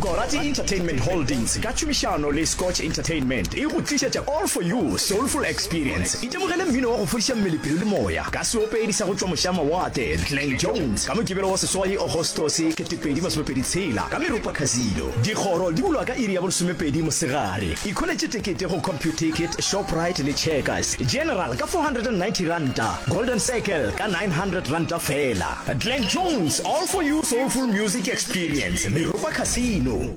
Gorati Entertainment Holdings ka tšhomišano le Scotch Entertainment e go tlišetša All For You Soulful Experience. Itemogele mmino wa go fodiša mmele, pelo le moya ka seopedi sa go tšwa mošamawatle Glen Jones ka Mokibelo wa seswai Agostose 2026 ka Meropa Casino. Dikgoro di bulwa ka iri ya bolesomepedi mosegare. Ikholetše tekete go Computicket, Shoprite le Checkers. General ka R490, Golden Circle ka R900 feela. Glen Jones, All For You Soulful Music Experience, Meropa Casino.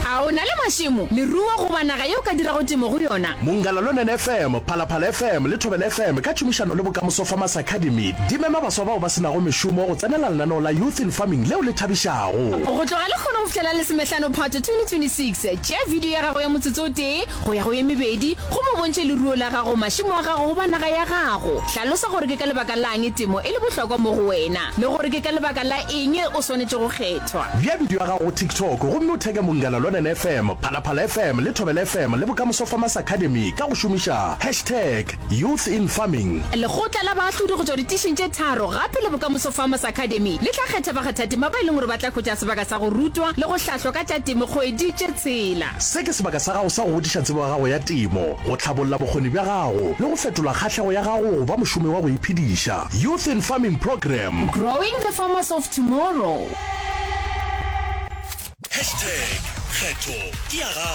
A o na le mašemo, leruo goba naga ye o ka dirago temo go yona? Monggalalonen FM, Phalaphala FM le Thobela FM ka tšhomišano le Bokamoso Farmers Academy di mema baswa bao ba se nago mešomo go tsenela lenaneo la Youth in Farming leo le thabišago. Go tloga lehono go fihla la Lesomehlano Phato 2026, tšea video ya gago ya motsotso o tee go ya go ye mebedi gomme o bontšhe leruo la gago, mašemo a gago goba naga ya gago. Hlalosa gore ke ka lebaka la'ng temo e le bohlokwa mo go wena le gore ke ka lebaka la eng o swanetše go kgethwa. Bea bidio ya gago go TikTok gomme o theke Mongala Lwanene FM, Phalaphala FM le Thobela FM le Bokamoso Farmers Academy ka go šomiša hashtag YouthInFarming. Lekgotla la baahlodi go tšwa ditišing tše tharo gape le Bokamoso Farmers Academy le tla kgetha bakgathatema ba e leng gore ba tla hwetša sebaka sa go rutwa le go hlahlwa ka tša temo kgwedi tše tshela. Se ke sebaka sa gago sa go godiša tsebo ya gago ya temo, go tlhabolla bokgoni bja gago le go fetola kgahlego ya gago go ba mošomi wa go iphediša. Youth in Farming Program. Growing the farmers of tomorrow. Hashtag kgetho ke ya gago.